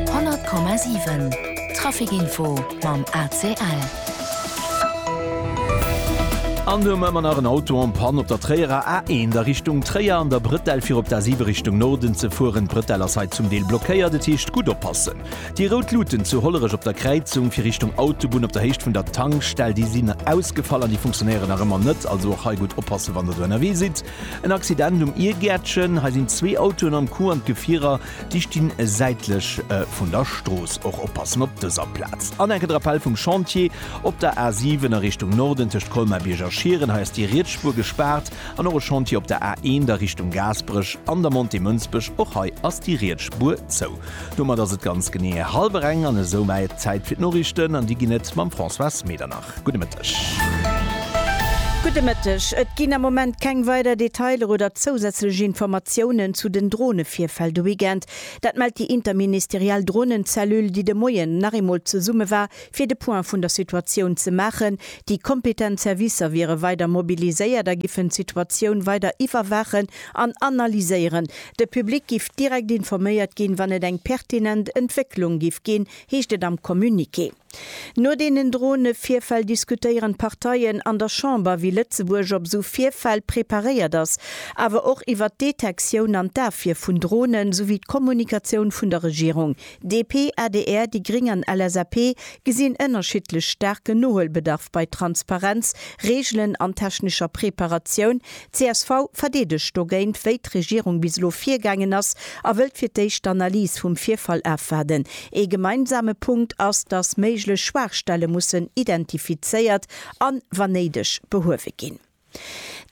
100,7 Trafic Info mam ACL. An do hu mer ëmmer nach en Auto en Panne op der Tréierer A1 a Richtung Tréier an der Bretelle fir op d'A7 Richtung Norden ze fueren. D'Bretelle ass hei zum Deel blockéiert, et heescht gutt oppassen. Déi rout Luuten zu Hollerech op der Kräizung fir Richtung Autobunn op der Héicht vun der Tankstell, déi sinn ausgefall an déi funktionéieren nach ëmmer net. Also och hei gutt oppassen, wann Der do ënnerwee sidd. En Accident um Iergäertchen. Hei sinn zwee Autoen am Coup an d'Gefierer déi stinn säitlech vun der Strooss. Och oppassen op dëser Plaz. An enke Drapell vum Chantier op der A7 a Richtung Norden tëscht Colmar-Bierg a Schieren. Hei ass déi riets Spuer gespaart. An och e Chantier op der A1 a Richtung Gaasperech an der Montée Mënsbech. Och hei ass déi riets Spuer zou. Domat ass et ganz genee hallwer eng an esoumat Zäit fir d'Noriichten an déi ginn et mam Françoise Medernach. Gudde Mëtteg. Gudde Mëtteg. Et ginn am Moment keng weider Detailer oder zousätzlech Informatiounen zu den Dronevirfäll de Weekend. Dat mellt déi interministeriell Dronenzellule, déi de Moien nach eemol zesumme war, fir de Point vun der Situatioun ze maachen. Déi kompetent Servicer wiere weider mobiliséiert a giffen d'Situatioun weider iwwerwaachen an analyséieren. De Public giff direkt informéiert ginn, wann et eng pertinent Entwécklung giff ginn, heescht et am Communiqué. No deenen Drone-Virfäll diskutéieren d'Parteien an der Chamber, wéi Lëtzebuerg op esou Virfäll preparéiert ass, awer och iwwer d'Detektioun an d'Afwier vun Dronen, souwéi d'Kommunikatioun vun der Regierung. DP, adr, déi gréng an LSAP gesinn ënnerschiddlech staarken Nohuelbedarf bei Transparenz, Reegelen an technescher Preparatioun, Csv verdeedegt dogéint, wéi d'Regierung bis elo virgaangen ass a wëllt fir d'éischt d'Analys vum Virfall afwaarden. Ee gemeinsame Punkt ass, datt méiglech Schwaachstelle mussen identifizéiert an, wann néideg, behuewe ginn.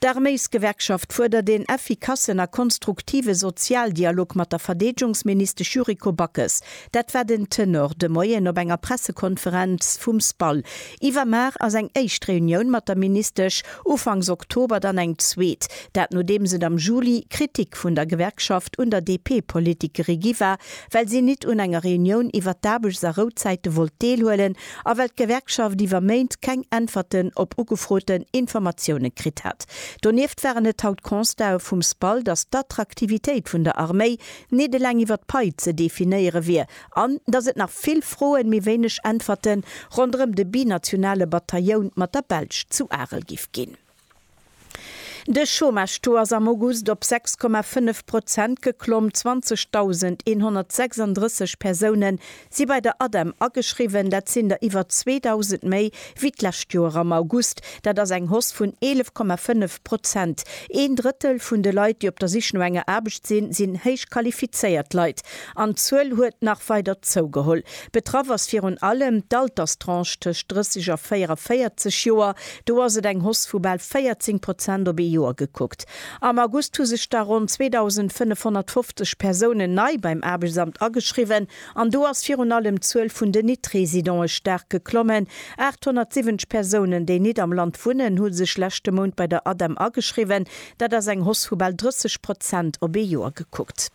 D'Arméisgewerkschaft fuerdert een effikassen a konstruktive Sozialdialog mat der Verdeedgungsministesch Yuriko Backes. Dat war den Tenor de Moien op enger Pressekonferenz vum SPAL. Iwwer Mar ass eng éischt Reunioun mat der Ministesch ufanks Oktober, dann eng zweet. Dat nodeems et am Juli Kritik vun der Gewerkschaft un der DP-Politikeri gi war, well si nit un enger Reunioun iwwer d'Aarbechts a Rouzäite wollt deelhuelen a well d'Gewerkschaft iwwer Méint keng Äntwerten op ugefroten Informatiounen kritt hat. Donieft waren et haut Constatë vum SPAL, datt d'Attraktivitéit vun der Arméi Nit eleng iwwer d'Pai ze definéiere wier, an datt et nach vill Froen, mee wéineg Äntwerten, ronderëm de binationale Batailloun mat der Belsch zu Arel giff ginn. De Chômage-Taux ass am August op 6,5 Prozent geklomm, 20.136 Persoune Si bei der ADEM ageschriwwen, dat sinn der iwwer 2.000 méi wéi d'lescht Joer am August. Dat ass eng Hausse vun 11,5 Prozent. Een Drëttel vun de Leit, déi op der Sich no enger Aarbecht sinn, sinn héich qualifizéiert Leit. An d'Zuel huet nach weider zougeholl. Betraff ass virun allem d'Alterstranche tëscht 30 a 44 Joer. Do ass et eng Hausse vu bal 14 Prozent op ee Joer gekuckt. Am August hu sech da ronn 2.550 Persounen nei beim Aarbechtsamt ageschriwwen an do ass virun allem d'Zuel vun den Nit-Residonë staark geklommen. 870 Persounen, déi nit am Land wunnen, hu sech leschte Mount bei der ADEM ageschriwwen. Dat ass eng Hoss vu bal 30 Prozent op ee Joer gekuckt.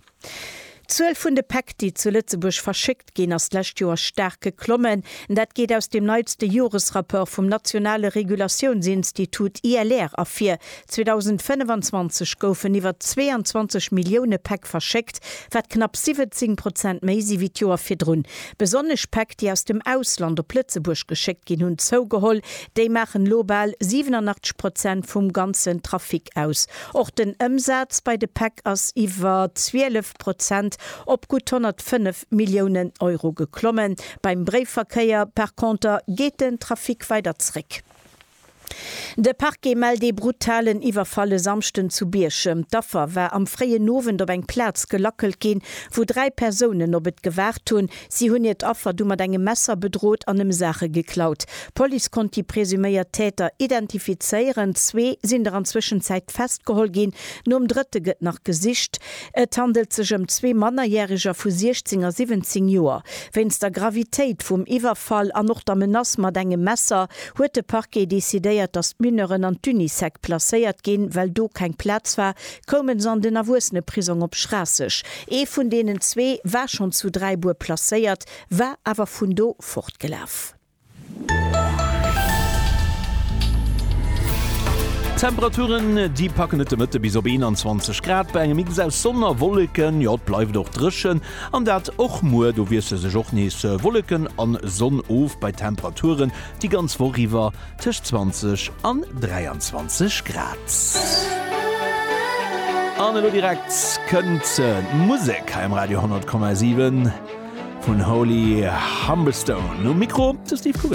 D'Zuel vun de Päck, déi zu Lëtzebuerg verschéckt ginn, ass d'lescht Joer staark geklommen. Dat geet aus dem neitste Joresrapport vum nationale Regulatiounsinstitut ILR ervir. 2025 goufen iwwer 22 Millioune Päck verschéckt, wat knapp 17 Prozent méi si wéi d'Joer virdrun. Besonnesch Päck, déi aus dem Ausland op Lëtzebuerg geschéckt ginn, hunn zougeholl. Déi maachen elo bal 87 Prozent vum ganzen Trafic aus. Och den Ëmsaz bei de Päck ass iwwer 12 Prozent op gutt 105 Milliounen Euro geklommen. Beim Bréifverkéier par Konter geet den Trafic weider zréck. De Parquet mellt ee brutalen Iwwerfall e Samschden zu Bierchem. D'Affer war am fréien Owend op eng Plaz gelackelt ginn, wou dräi Persounen op et gewaart hunn, Si hunn hiert Affer du mat engem Messer bedrot an em Saache geklaut. D'Police konnt déi presuméiert Täter identifizéieren. Zwee sinn der an Zwëschenzäit festgeholl ginn. Nom drëtte gëtt nach gesicht. Et handelt sech ëm zwee Mannerjäreger vu 16 a 17 Joer. Wéinst der Gravitéit vum Iwwerfall an och der Menace mat engem Messer huet de Parquet decidéiert, datt d'Mineuren an d'Unisec placéiert ginn, well do keng Plaz war koumen se an den Erwuesseneprisong op Schraasseg. Ee vun deenen zwee war schonn zu Dräibuer placéiert, war awer vun do fortgelaf. D'Temperaturen, déi packen et de Mëtte bis op 21 Grad bei engem Mix aus Sonn a Wolleken. Jo, et bleift och dréchen, an dat och muer. Do wiessle sech och nees Wolleken a Sonn of bei Temperaturen, déi ganz Woch iwwer Tëscht 20 an 23 Grad. An elo direkt kënnt d'Musek hei um Radio 10,7 vun Holy Humberstone. Um Mikro de Steve Kugener.